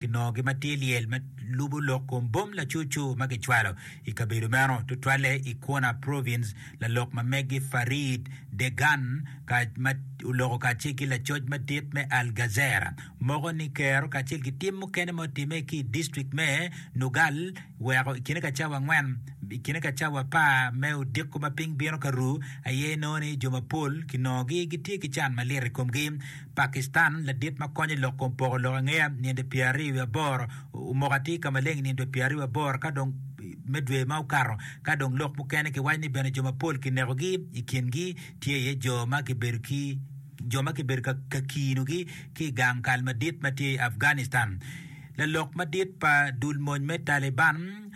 Kinongogi ma tye lyel ma lubo lok kom bom lacucu ma kicwalo i kabedo meno, tutwalle i Quona Province. Lalok ma megi Farid Degan, ma oloko kacel ki lacoc madit me Al Gazera, moko ni kero kacel ki tim mukene ma otimme ki i distrikt me Nugal weko i kine ka cawa angwen i kine ka cawa apar me odiko ma piny bino ka ru aye nongo ni jo mapol kinongogi gitye ki can malit i komgi. Pakistan, Ladit ma konyo i lok kom poko lok angeya ninde pyer aryo wiye aboro omoko atir ka maleng i ninde pyer aryo wiye aboro ka dong me dwe ma okato ka dong lok mukene ki waco ni bene jo mapol ki neko gi i kin gi tye iye jo ma ki bedo ki jo ma ki bedo ka kiino gi ki i gang kal madit ma tye i Afghanistan. Lalok madit pa dul mony me Taliban,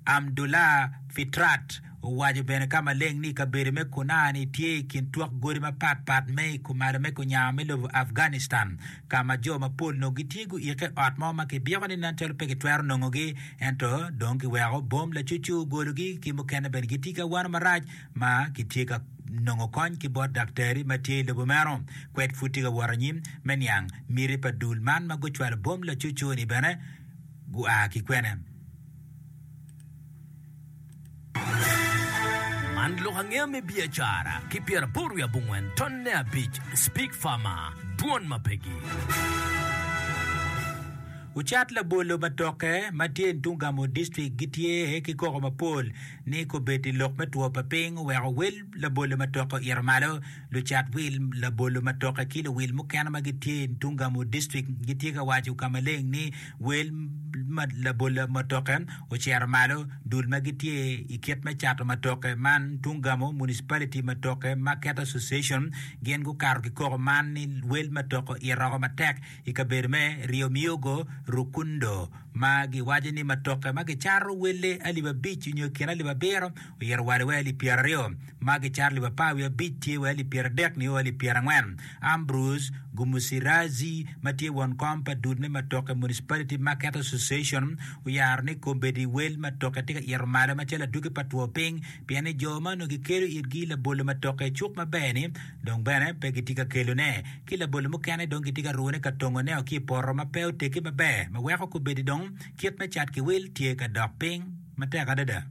Amdullah Fitrat owaco bene ka maleng ni kabedo me Kunar ni tye i kin twok godi mapat pat me i kumalo me kunyanga me lobo Afghanistan ka ma jo mapol nongo gitye guikke ot mo ma kibyeko ni nen calo pe kitwero nongogi ento dong kiweko bom lacucu ogologi ki mukene bene gitye ki awano marac ma kitye ka nongo kony ki bot daktari ma tye i lobo meno. Kwed pud tye ka wot anyim me niang miti pa dul man ma gucwalo bom lacucu-ni bene gua ki kwene? Man lok angeya me biacara ki pyeraboro wiye abongwen ton ne abic Speak Farmer Dwon ma pegi. Ocat labolo pa toke ma tye i Ntungamo District gitye ki koko mapol ni kobedi lok me two pa piny oweko wel labolo ma toke oito malo. Lucat wil, labolo matoke ki luwil mukene ma gitye i Ntungamo distrik gitye ka waco ka maleng ni wel ma labola matoke ocito malo dul ma gitye i kit me cato matoke man. Ntungamo Municipality Matoke Market Association gin gukato ki koko man ni wel matoke oitoko matek i kabedo me Rio Miyogo, Rukundo ma giwaco ni matoke ma gicato welle alip abic nyo i kin alip abiro oito wale wai alip pyeraryo. Magi cato lib apar wiye abic tye wa lib pyeradek nio wa lib pyerangwen. Ambrose Gumusiradzi ma tye won kom pa dul me matoke Municipality Market Association oyaro ni kombeddi wel matoke tye ka ito malo macalo adwogi pa two piny pien ni jo ma onongo gikelo itgi labolo matoke cuk maber ni dong bene pe gitye ka kelone ki labolo mukene dong gitye ka rune ka tongone o ki i poto ma pe otegi maber ma weko kombeddi dong kit me cat ki wil tye ka dok piny matek adada.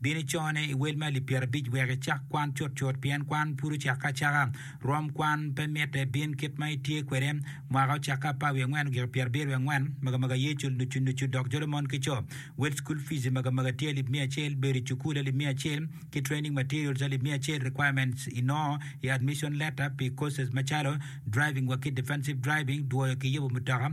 Bin icone i wel me alip pyerabic wek icak kwan cutcut, pien kwan pud ocakke acaka. Rwom kwan pe mitte, bin kit ma itye kwede. Mwaka ocakke apar wiye angwen ogiko pyerabiro wiye angwen, magamaga aye cul nucu nucu, dok jolo mon ki co. Wel cukul fizi magamaga tye alip miya acel, bedo i cukul alip miya acel, ki training materials alip miya acel, requirements inongo i admission letter pi courses macalo, driving wa ki defensive driving, dwoyo ki yobo mutoka,